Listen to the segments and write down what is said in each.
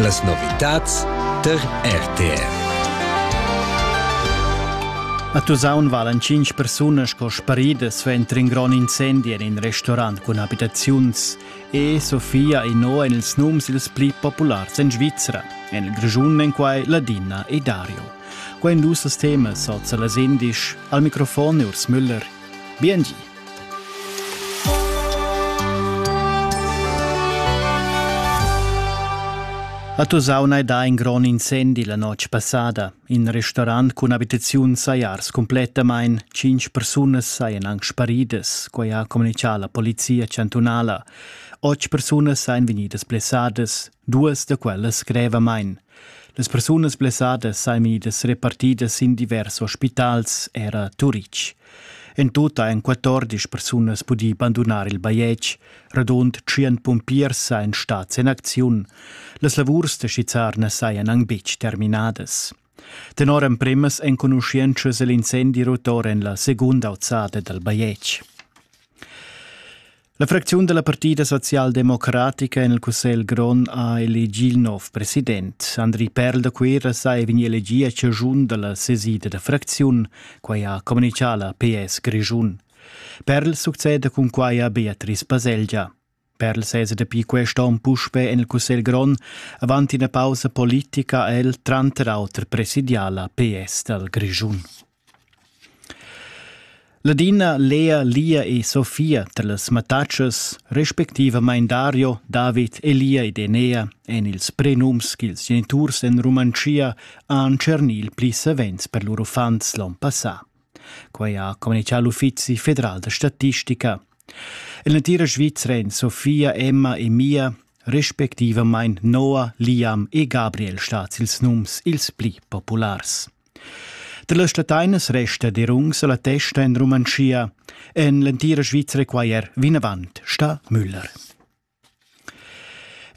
Las novitads tar RTV. A Tusaun valan cinc persunas sco sparidas suenter in grond incendi en in restaurant cun abitaziuns. E Sofia Ino en ils nums ils pli populars en Svizra. En il Grischun en quai Ladina e Dario. Quai en dus temas sozza las indisch. Al microfon Urs Müller. Biengi. A Tusaun hai dà in grond incendi la notg passada. In restaurant cun abitaziun saja ars complettamain. Cinc persunas sajan anc sparidas, quai ha communitgà la polizia chantunala. Otg persunas sajan vegnidas blessadas, duas da quellas grevamain. Las persunas blessadas sajan vegnidas repartidas sin divers ospitals, era Turitg. En tut ha en 14 persunas pudì bandunar il bajetg. Radund 100 pumpiers sajan stads en acziun. Las lavurs da skizzar na sajan anc betg terminadas. Tenor empremas enconuschientschas è l'incendi rotor en la segunda auzada dal bajetg. La fracziun della Partida socialdemocratica en il Cussegl grond ha elegì il nov president. Andri Perl da Cuira sa è vegnì elegì a ciagiun dalla sesida da fracziun, quai ha communicato la PS Grischun. Perl succede cun quai a Beatrice Baselgia. Per sese dapi quest onn puspè en il Cussegl grond avanti una pausa politica el tranter auter presidiala PS dal Grischun. Ladina, Lea, Lia e Sofia dallas mattatschas, respectivamain Dario, David, Elia ed Enea èn ils prenums ch'ils geniturs en Rumantschia han tschernì il pli savens per lur uffants l'onn passà. Quai ha communitgà l'Uffizi federal da statistica. En l'entira Svizra èn Sofia, Emma e Mia respectivamain Noah, Liam e Gabriel stads ils nums ils pli populars. Dallas stateinas resta derungs alla testa en Romanschia. En l'entira Svizra quai er vinavant, sta Müller.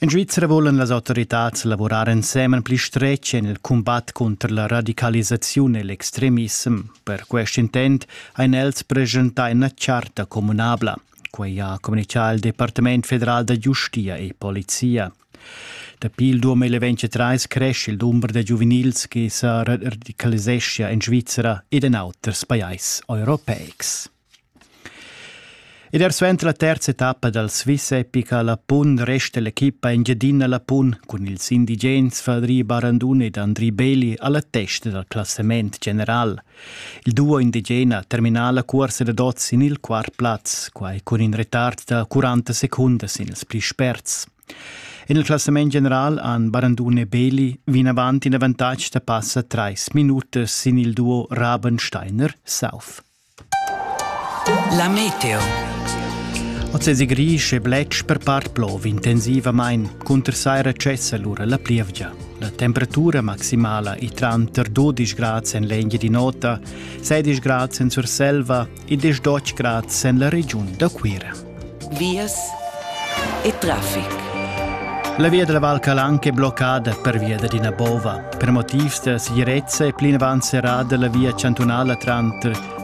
En Svizra volan las autoritads lavorar ensemen pli stretg en il cumbat contro la radicalisaziun e l'extremissem. Per quest intent ein els presentà ina charta communabla. Quei ha communicato il Departament federal da giustia e polizia. Dapi il 2023 cresce il dumber da giuvenils che sa radicaliseschia en Svizzera ed en auters pajais europeics. Ed er suenter la terza etappa dal Swiss Epica Lapun resta l'equipa Engiadina Lapun cun ils indigens Fadri Barandun ed Andri Beli alla testa dal classament general – Il duo indigena termina la cuorsa dad oz sin il quart plaz, quai cun in retard da 40 secundas sin ils pli sperts. En il classament general han Barandun e Beli vinavant in avantatg da passa trais minutas sin il duo Rabensteiner-South. La meteo. Ozzesi Grisch e Bletsch per part plov intensivamain, cunter saira cessa lura la plievgia. La temperatura maximala è tranter 12 grads en l'Engiadin'Ota, 16 grads en Surselva e 18 grads en la regiun da Cuira. Vias e traffic. La via della Val Calanca è bloccata per via da Dina Bova. Per motivs da sicurezza è plinavant serrata la via cantunala tranter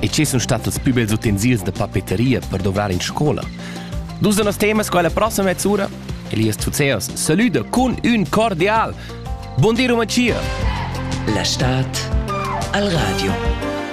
E che sun stat ils più bels utensils da papeteria per dovrar in scola? Dus da nos temas quella prossima mezz'ura Elias Tuzeos saluda con un cordial. Buon di Rumachia! La Stadt al Radio.